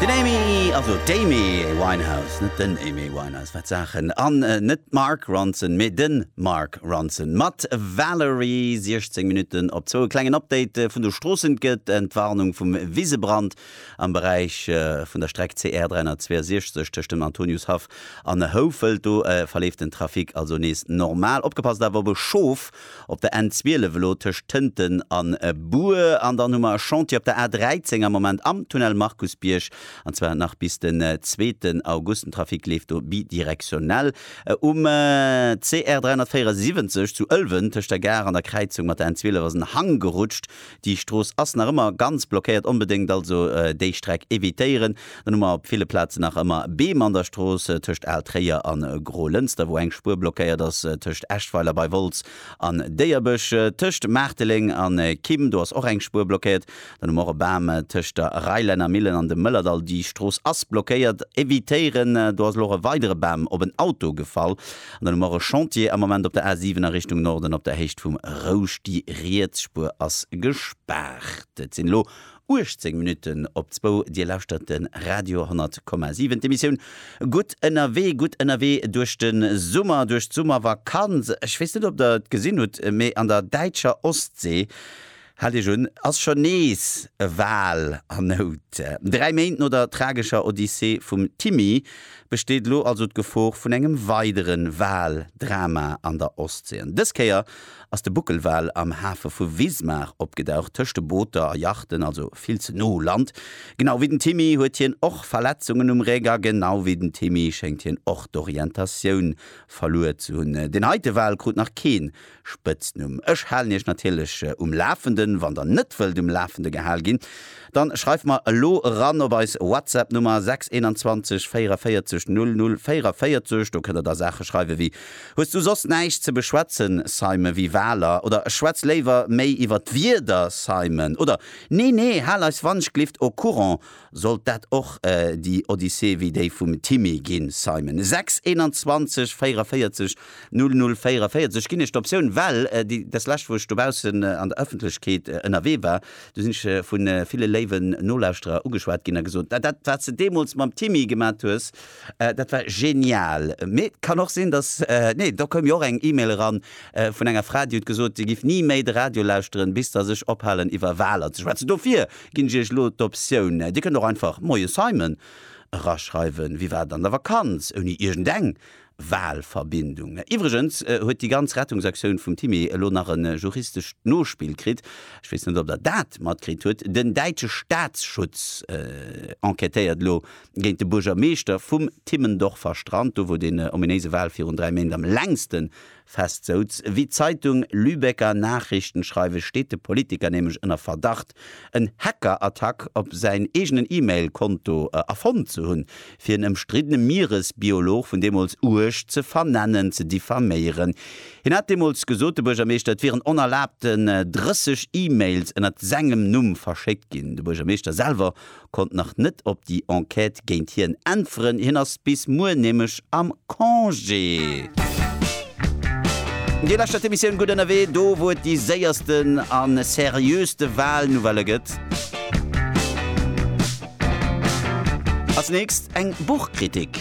Den Amy, also d'Amy Winehouse, net den Aimé Winehouse, wat Saachen, an net d'Mark Ronson, mee de Mark Ronson mat Valerie. 16 Minutten op zwou. E klengen Update vun de Stroossen, 't gëtt Entwarnung vum Wisebrand am Beräich vun der Streck CR 362 tëscht dem Antoniushaff an Houfelt. Do verleeft den Trafic also nees normal. Opgepasst awer op e Schof! Op der N 12 elo tëscht Tënten a Bur. An dann hu mer e Chantier op der A 13 am Moment am Tunnel Markusbierg, an zwar nach bis den zweeten August. Den Trafic leeft do bidirektionell. Um CR 374 zu Ëlwen tëscht der Gare an der Kräizung mat der N 12 ass en Hang gerutscht. Déi Strooss ass nach ëmmer ganz blockéiert, onbedéngt also déi Streck evitéieren. Dann hu mer op ville Plazen nach ëmmer Beem an der Strooss tëscht Al Tréier an Grolënster, wou eng Spuer blockéiert ass, tëscht Eschweiler bei Wolz an Déierbech, tëscht Maarteleng an Kim, do ass och eng Spuer blockéiert. Dann hu mer och e Bam tëscht der Reilenner Millen an dem Mëllerdall, déi Strooss ass blockéiert, evitéieren. Do ass elo och e weidere Bam op en Auto gefall. An dann hu mer e Chantier am Moment op der A 7 a Richtung Norden op der Héicht vum Rousch. Déi riets Spuer ass gespaart. Et sinn elo 18 Minutten op zwou. Dir lauschtert de Radio 10,7, d'Emissioun Gutt ënnerwee. Gutt ënnerwee duerch de Summer, duerch d'Summervakanz. Ech weess net, ob Der et gesinn hutt, mee an der däitscher Ostsee Haalt Iech un, ass schonn nees e Wal an Nout. Dräi Méint no der tragescher Odyssee vum Timmy besteet elo also d'Gefor vun engem weidere Wal-Drama an der Ostsee. An dës Kéier ass de Buckelwal am Hafe vu Wismar opgedaucht, tëscht de Booter a Yachten, also vill ze no u Land. Genau wéi den Timmy huet hien och Verletzungen um Réck a genau wéi den Timmy schéngt hien och d'Orientatioun verluer ze hunn. Deen heite Wal krut nach keen Spëtznumm. Ech halen iech natierlech um Lafenden. Wann der net wëllt um Lafende gehal ginn, dann schreift mer elo eran op eis Whatsapp Nummer 621 44 00 44. Do kënnt der da Saache schreiwe wéi, Hues du soss näischt ze beschwätzen, Simon, wéi Waler? oder Schwätz léiwer méi iwwer d'Wieder, Simon! oder Nee, nee, hal eis Wandschglift au courant, Sollt dat och déi Odyssee wéi déi vum Timmy ginn, Simon? 6 21 44 00 44 ginn ech d'Optioun, well déi des lescht, wou ech dobaussen an der Ëffentlechkeet ënnerwee war, do sinn ech vu ville léiwen Nolauschterer ugeschwat ginn a gesot, dat, wat s de deemools mam Timmy gemat hues, dat war genial. Mee et kann och sinn, datt, nee, do koum jo och eng E-Mail eran vun enger Fra, déi huet gesot, si giff ni méi de Radio lauschteren, bis datt ech ophalen, iwwer Waler ze schwätzen. Dofir Ginn ech Iech elo d'Optioun, Dir kënnt och einfach Moie Simon eraschreiwen, wéi wat an der Vakanz, ouni iergendeng Walverbindung. Iwwregens huet déi ganz Rettungsaktioun vum Timmy elo nach e juristescht Nospill kritt, ech weess net, ob Der dat matkritt hutt, den däitsche Staatsschutz enquêtéiert elo géint de Buergermeeschter vum Timmendorfer Strand, do wou dee ominéise Wal virun dräi Méint am längsten Fest souz. Wéi d'Zeitung Lübecker Nachrichten schreiwe steet de Politiker nämlech ënner Verdacht, en Hackerattack op säin eegenen E-Mail Konto erfonnt ze hunn, fir en ëmstriddene Mieresbiolog vun deemools uerg ze vernennen, ze diffaméieren. Hien hat deemools gesot, de Buergermeeschter, et wieren onerlaabten 30 E-Mails ënnert sengem Numm verschéckt ginn. De Buergermeeschter selwer konnt nach net op déi Enquête géint hien äntweren, hien ass bis muer nämlech am Congé. Déi lescht dat Emissioun Gutt ënnerwee, do wou et déi séiersten a seriöste Wahlnouvellë gëtt. Als nächst eng Buchkritik.